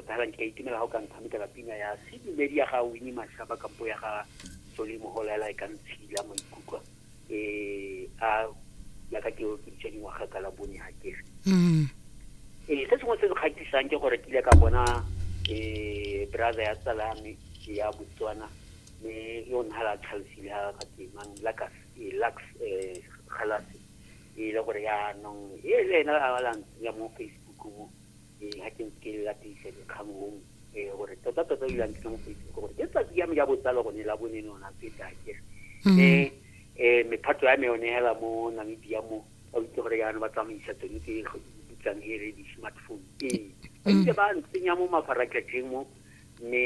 Tota fela nka itumela ga o ka ntshamekela pina ya sedumedi ya ga Winnie Mashaba kampo ya ga Soli Moholela e ka ntshila maikutlo eh a ya ka ke okiditse dingwaga ka la bone ga kere Mm. ee se sengwe se se kgatlhisang ke gore ke ile ka bona um brother ya tsala ya me ya botswana me yo nna la tlhalosile ga ga temang lakas eh, lax um galase e le gore yaanong e le ena a la ntsenya mo facebook mo ee ga ke ke latisa dikgang mo ee gore tota tota dilo ntse mo facebook gore ke tsatsi ya me ya botsalo gone la bone nona ke tla ke mm. mme um mephato ya me yone hela mo namibia mo ba itse gore yana ba tsamaisa tsone tse bitsang e re di-smartphone ee ba mm. itse ba ntsenya mo mafaratlhatlheng mo mme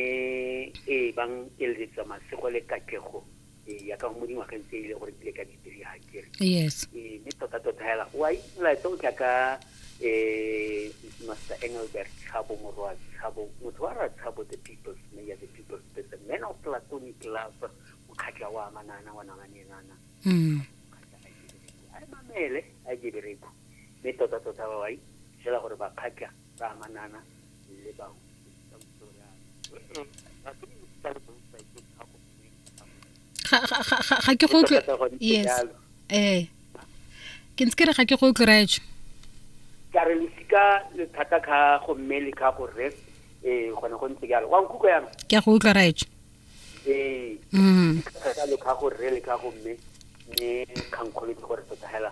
ee bang eletsa masego le katlego ee ya ka go mo dingwageng tse ile gore bile ka di three ha kere yes ee mme tota tota hela wa itse molaetsa o tla ka eh master engelbert tshabo morwa tshabo motho wa ra tshabo the people's mayor the people's person man of platonic love mokgatla wa manana wa nanganenana mm. a re mamele a je bereko mme tota tota ba wai fela gore ba kgatla ba amanana le bao ga ke go yes eh ke ntse ke re ga ke go tloretsho ka re losika le thata ka go mme le ka go re eh gone go ntse jalo wa nkutlwa yana ke a go utlwa raetsho ee mm. thata le ka go re le ka go mme mme kgankgolo ke gore tota hela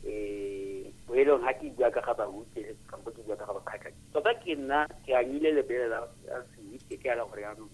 eh boelong ha ke bua ka ga bahuti le kampo ke bua ka ga bakgatlha tota ke nna ke anyile lebele la sewitse ke ala gore yanong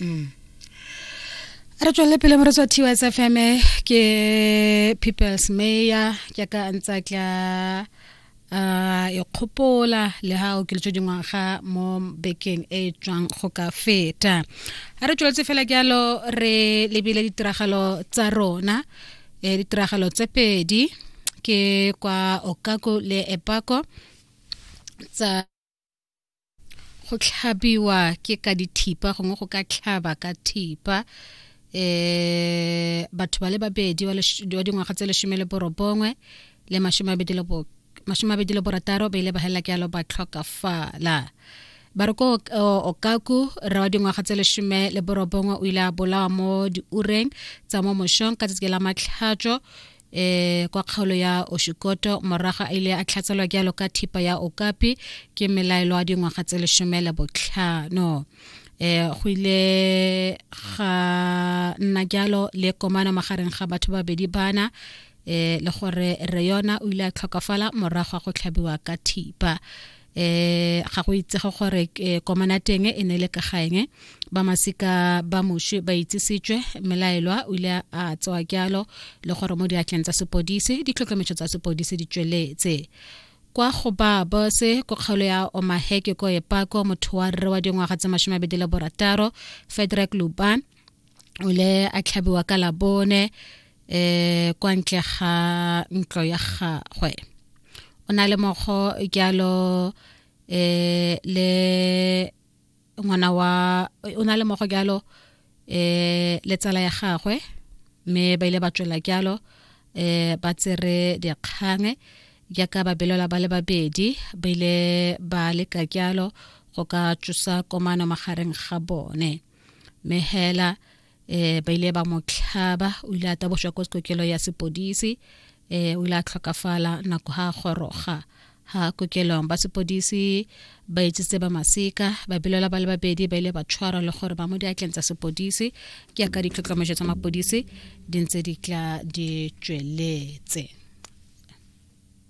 mm. re tswelele pele moretsi wa tws fm ke peoples mayor ke ka ntsa tla uh, e kgopola le ha o kiletswe dingwaga mo bekeng e e tswang go ka feta a re tsweletse fela jalo re lebile ditiragalo tsa rona e ditiragalo tse pedi ke kwa okako le epako tsa go tlhabiwa ke ka dithipa gongwe go ka tlhaba ka thipa eh batho ba le babedi wa dingwaga tse lesome le borobongwe le masome abedi le masome abedi le borataro ba ile ba helela ke alo ba tlhokafala ba re ko okaku re wa dingwaga tse lesome le borobongwe o ile a bolawa mo diureng tsa mo mošong ka tsatsi la matlhatso eh kwa kgaolo ya oshikoto moraga a ile a tlhatselwa ke alo ka thipa ya okapi ke melaelo a dingwaga tse lesome le botlhano eh go ile ga nna jalo le komana magareng ga batho ba bedi bana eh le gore re yona o ile a tlhokafala morago go tlhabiwa ka thipa eh ga go itsege gore eh, komana teng e ne le ka gaeng ba masika ba moshe ba itsisitswe melaelwa o ile a tsewa kyalo le gore mo diatleng tsa sepodisi ditlhokemetso tsa sepodisi di tsweletse kwa go ba bose ko kgaolo ya omaheke ko epako motho wa rre wa dingwaga tse mashome a bedi le borataro fedrek luban o ile a tlhabiwa ka labone eh kwa ntle ga ntlo ya gagwe o na le mogo jalo eh le ngwana wa o na le mogo jalo eh le tsala ya gagwe mme ba ile ba tswela jalo eh ba tsere dikgang jaaka babelelwa ba le babedi ba ile ba leka jalo go ka tsosa komano magareng ga bone mehela eh ba ile ba mo tlhaba o ile a tabošwa ko kokelo ya sepodisi eh o ile a tlhokafala nako ha goroga ha kokelong ba sepodisi ba etsitse ba masika ba bilela ba le babedi ba ile ba tshwarwa le gore ba mo diatleng tsa sepodisi ke ya ka ditlhotlhomejo tsa mapodisi di ntse di tla di tsweletse